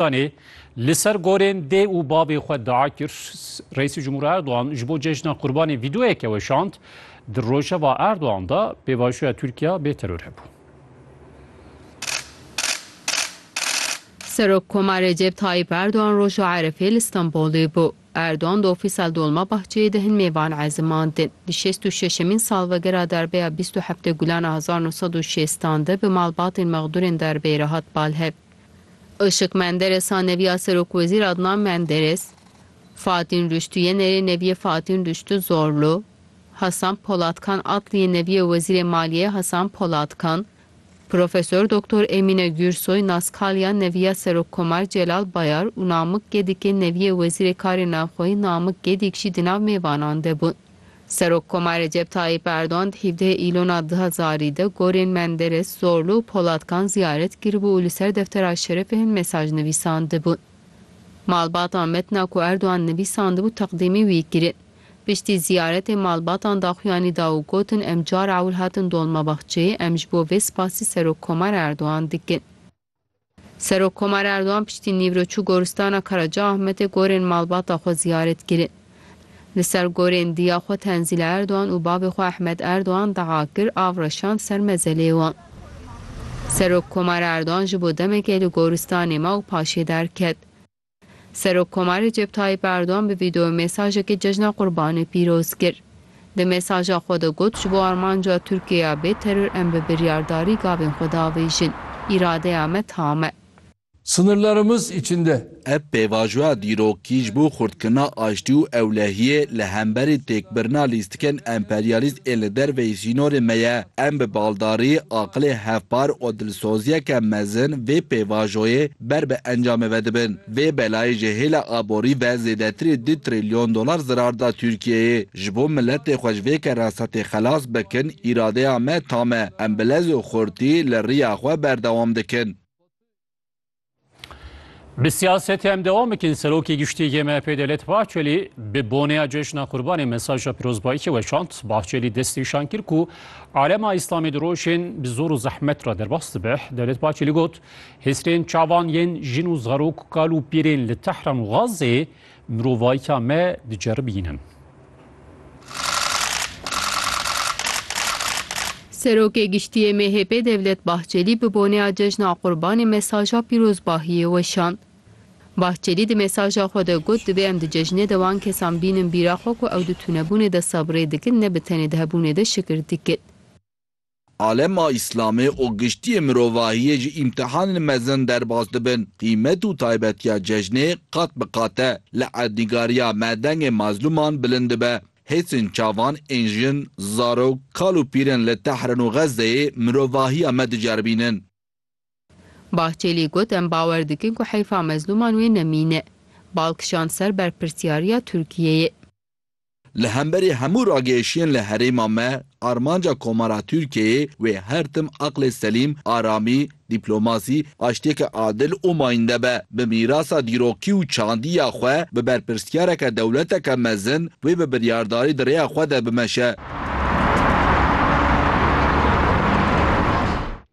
Danê li ser gorên dê û bavê xwe dia kir, Reîsê Cumhur Erdogan ji bo cejna Qurbanê vîdeoyeke weşand, Di rojeva Erdogan de pêvajoya Tirkiya bê teror hebû. Serokkoma Recep Tayyîp Erdogan roja Erefê li Stenbolê bû. Erdogan di ofîsa li Dolmabahçeyê de hin mêvan ezimandin. Di şêst û şeşemîn salvegera darbeya bîst û heft Gulana hezar nû sed û şêstan de bi malbatên mexdûrên darbeyê re hat bal hev. Işık Menderes a neviya Serokwezîr Adnan Menderes, Fatîn Rüştû Yenerê neviyê Fatîn Rüştû Zorlu, Hasan Polatkan Atliyê neviyê Wezîrê Maliyeyê Hasan Polatkan, Profesor Doktor Emîne Gürsoy Naskaliya neviya Serokkomar Celal Bayar û Namık Gedikê neviyê Wezîrê Karê Navxweyî Namık Gedik jî di nav mêvanan de bûn. Serokkoma Recep Tayyîp Erdogan di hîvdehê Îlona du hezarî de gorên Menderes, Zorlu û Polatkan ziyaret kiribû û li ser deftera şerefê hin mesaj nivîsandibûn. Malbatan metna ku Erdogan nivîsandibû teqdîmî wî kirin. Piştî ziyaretê malbatan daxuyanî da û gotin em car ewil hatin Dolmabahçeyê, em ji bo vê spasî Serokkoma Erdogan dikin. Serokkomar Erdogan piştî nîvro çû goristana Karacaahmetê gorên malbata xwe ziyaret kirin. Li ser gorên diya xwe Tenzîla Erdogan û bavê xwe Ehmed Erdogan deqa kir av reşand ser mezelê wan. Serokkomar Erdogan ji bo demekê li goristanê ma û paşê derket. Serokkomar Recep Tayyîp Erdogan bi vîdeoyê mesajekê Cejna Qurbanê pîroz kir. Di mesaja xwe de got, Ji bo armanca Tirkiyeyê ya bê teror em bi biryardarî gavên xwe diavêjin. Îradeya me tam e. Sınırlarımız içinde. Ev pêvajoya dîrokî ji bo xurtkirina aştî û ewlehiyê li hemberî têkbirina lîstikên emperyalîst ên li derveyî sînorên me ye. Em bi baldarî, aqilê hevpar û dilsoziyeke mezin vê pêvajoyê Ber bi encamê ve dibin. Vê belayê ji hêla aborî ve zêdetirê du trîlyon dolar zirar da Tirkiyeyê. Ji bo miletê xwe ji vê keresetê xelas bikin îradeya me tam e. Em bi lez û xurtî li riya xwe berdewam dikin. Bi siyasetê em dewam bikin, Serokê Giştî yê MHP'ê Devlet Bahçelî bi boneya Cejna Qurbanê mesaja pîrozbayîkê weşand. Bahçelî destnîşan kir ku alema Îslamê di rojên bi zor û zehmet re derbas dibe. Devlet Bahçelî got, Hêsrên çavan yên jin û zarok, kal û pîrên li Tehran û Gazê mirovayîtiya me diceribînin. Serokê Giştî yê MHP'ê Devlet Bahçelî bi boneya Cejna Qurbanê mesaja pîrozbahiyê weşand. Bahçelî di mesaja xwe de got, Divê em di cejnê de wan kesan bînin bîra xwe ku ew di tunebûnê de sebrê dikin ne bi tenê di hebûnê de şikir dikin. Alema Îslamê û giştiyê mirovahiyê ji îmtihanên mezin derbas dibin. Qîmet û taybetiya cejnê qat bi qat e. Li erdnîgariya me dengê mazlûman bilind dibe. Hêsên çavan ên jin, zarok, kal û pîrên li Tehran û Xezzeyê mirovahiya me diceribînin. Bahçelî got em bawer dikin ku heyfa mezlûman wê nemîne. Bal kişand ser berpirsyariya Tirkiyeyê. Li hemberî hemû ragihêşiyên li herêma me, armanca Komara Tirkiyeyê wê her tim aqlê selîm, aramî, dîplomasî, aştiyeke adil û mayînde be. Bi mîrasa dîrokî û çandî ya xwe, bi berpirsiyareke dewleteke mezin, wê bi biryardarî di rêya xwe de bimeşe.